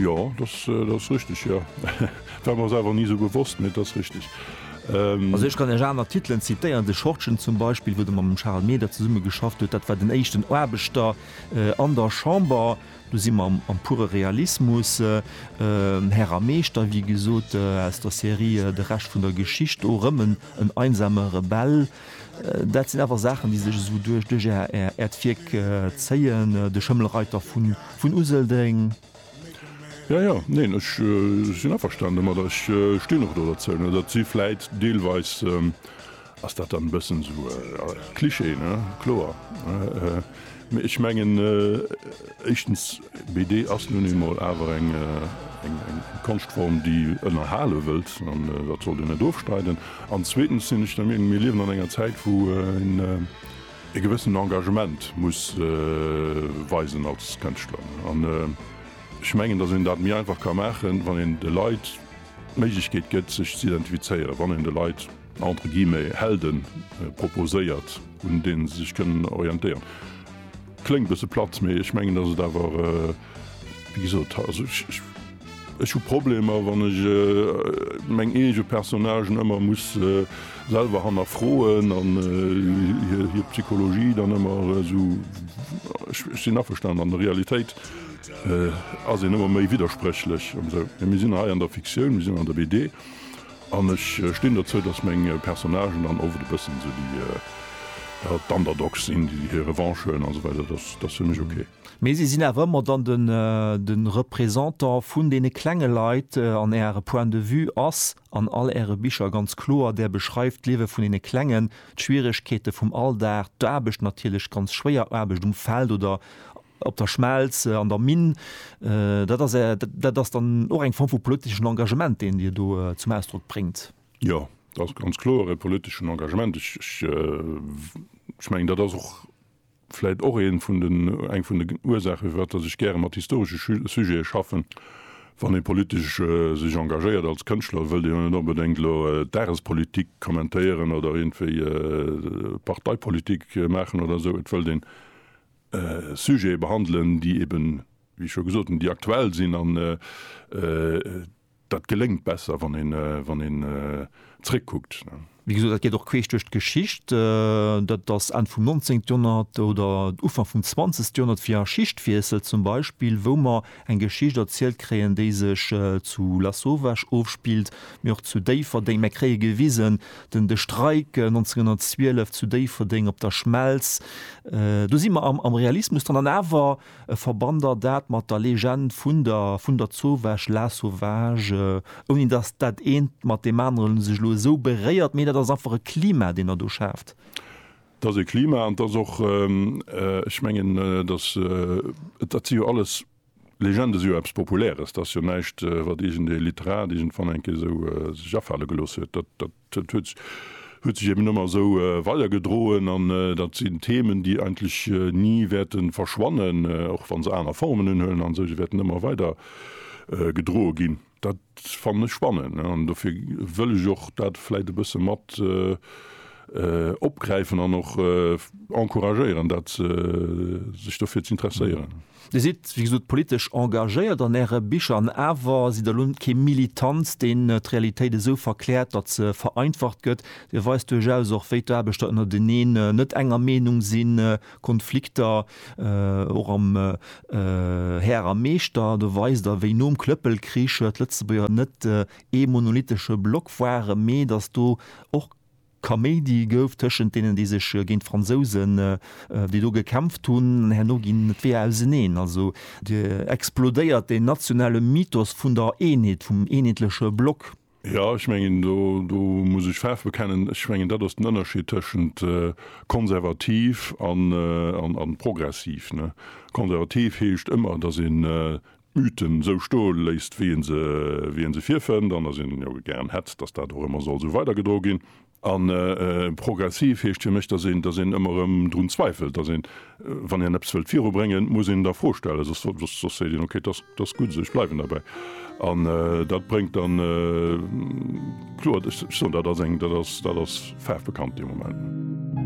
Jo dass ass richteg jo war mer selwer ni sou bewosst mee dass richteg. Also ech kann iech aner Titelen zitéieren, de Schortgen zum Beispill wou de mam dem Charel Meder zesumme geschafft huet, dat war den éischten Aarbechter an der Chamber, do si mer am pure Realismus, Herr a Meeschter wéi gesot aus der Serie De Rescht vun der Geschicht, do erëm en einsamer Rebell. Dat sinn awer Saachen, déi sech esou duerch Äert Wierk zéien, de Schëmmelreiter vun Useldeng. Jo, jo, neen, ech sinn averstanen domadder. Ech stinn och do derzou. Dat si vläit deelweis, ass dat dann e bëssen esou Cliché, ne, kloer. Mee ech mengen éischtens BD ass nun eemol awer eng Konschtform, déi ënnerhale wëllt an dat sollt een net ofstreiden. An zweetens sinn ech der Meenung, mir liewen an enger Zäit, wou een e gewëssenen Engagement muss weisen als Kënschtler. An ech mengen, datt een dat méi einfach ka maachen, wann een de Leit d'Méiglechkeet gëtt sech z'identifizéieren, wann een de Leit, entre guillemets, Helden proposéiert, un deene se sech kënnen orientéieren. Kléngt e bësse platt, mee ech mengen, dass et awer, wéi gesot, also ech hu Problemer, wann ech meng eege Personnagen ëmmer muss selwer hannerfroen an hir Psychologie dann ëmmer esou, ech sinn averstan, an der Realitéit ass een ëmmer méi widderspréchlech an esou. Mee mir sinn hei an der Fiktioun, mir sinn an der BD. An ech stinn dozou, dass meng Personnagen dann oft e bëssen esou déi, ja, d'Underdogs sinn, déi hir Revanche huelen an esou weider. Dass ass fir mech ok. Mee si sinn awer ëmmer dann de Représentant vun deene klenge Leit an Äre Point de vue ass an all Äre Bicher ganz kloer. Där beschreift d'Liewe vun deene Klengen, d'Schwieregkeete vum Alldag, d'Aarbecht natierlech, ganz schwéier Aarbecht um Feld oder, Op der Schmelz, an der Minn. Dat ass, dat ass dann och eng Form vu politeschen Engagement, deen Dir do zum Ausdrock bréngt. Jo, dat ass ganz kloer e politeschen Engagement. Ech, ech mengen, dat ass och vläicht och ee vun den, eng vun de Ursaachen, firwat dass ech gäre mat historesche Sujete schaffen. Wann ee politesch sech engagéiert als Kënschtler, wëllt ee jo net onbedéngt elo d'Dagespolitik kommentéieren oder iergendwéi Parteipolitik maachen oder esou. Et wëllt een. Sujete behandelen, déi eben, wéi ech scho gesot hunn, déi aktuell sinn an dat geléngt besser, wann een zréckkuckt. Wéi gesot, dat geet och queesch duerch d'Geschicht. Dat ass Enn vum 19. Joerhonnert oder Ufank vum 20. Joerhonnert, fir a Schichtwiessel zum Beispill, wou mer Eng Geschicht erzielt kréien, déi sech zu Lasauvage ofspillt, mee och zu Déifferdeng. Mär kréie gewisen den de Streik 1912 zu Déifferdeng op der Schmelz. Do si mer am am Realismus dran an awer verbannt der dat mat der Legend vun der vun der Zauvage, Lasauvage, ouni datt dat eent mat deem anere sech elo esou beréiert, mee dat ass einfach e Klima, deen der do schaaft. Et ass e Klima an et ass och, ech mengen, dass, dat si jo alles Legenden, si jo eppes Populäres, dat ass jo näischt, wat iergendee Literat iergendwann eng Kéier esou sech afale gelooss huet. Dat huet huet sech eben ëmmer esou weidergedroen an dat sinn Themen, déi eigentlech ni wäerte verschwannen, och wa se aner Formen unhuelen an esou. Se wäerten ëmmer weider gedroe ginn. Dat fannen ech spannend an dofir wëll ech och dat vläit e bësse mat opgräifen an och encouragéieren, dat sech dofir z'interesséieren. Dir sidd, wéi gesot, politesch engagéiert an Äre Bicher an awer sidd Der elo net kee Militant, deen d'Realitéit esou verkläert, datt se vereinfacht gëtt. Dir weist duerchaus och, wéi d'Aarbechter ënnerteneen net enger Meenung sinn, Konflikter och am Här a Meeschter, do weist Der, wéi nom Klëppelkrich d'Lëtzebuerger net ee monolithesche Block waren, mee datt do och Kaméidi gouf tëschent deenen, déi sech géint d'Fransousen, déi do gekämpft hunn, an herno ginn d'Weeër auseneen. Also do explodéiert deen nationale Mythos vun der Eenheet, vum eenheetleche Block. Jo, ech mengen, do, do muss ech Faarf bekennen. Ech mengen, dat ass den Ënnerscheed tëschent konservativ an, an, a progressiv, ne. Konservativ heescht ëmmer, datt een d'Mythen esou sto léisst, wéi ee se, wéi ee se virfënnt, an datt een jo gären hätt, datt dat och ëmmer soll esou weidergedro ginn. A progressiv heescht fir mech, datt een, datt een ëmmer erëm drun zweifelt, datt een, wann een eppes wëllt virubréngen, muss een et a Fro stellen, soss, soss, soss seet een, okay, datt, datt gutt esou, ech bleiwen derbäi. An dat bréngt dann, kloer, ech soen, dat ass eng, dat ass, dat ass faarfbekannt dee Moment.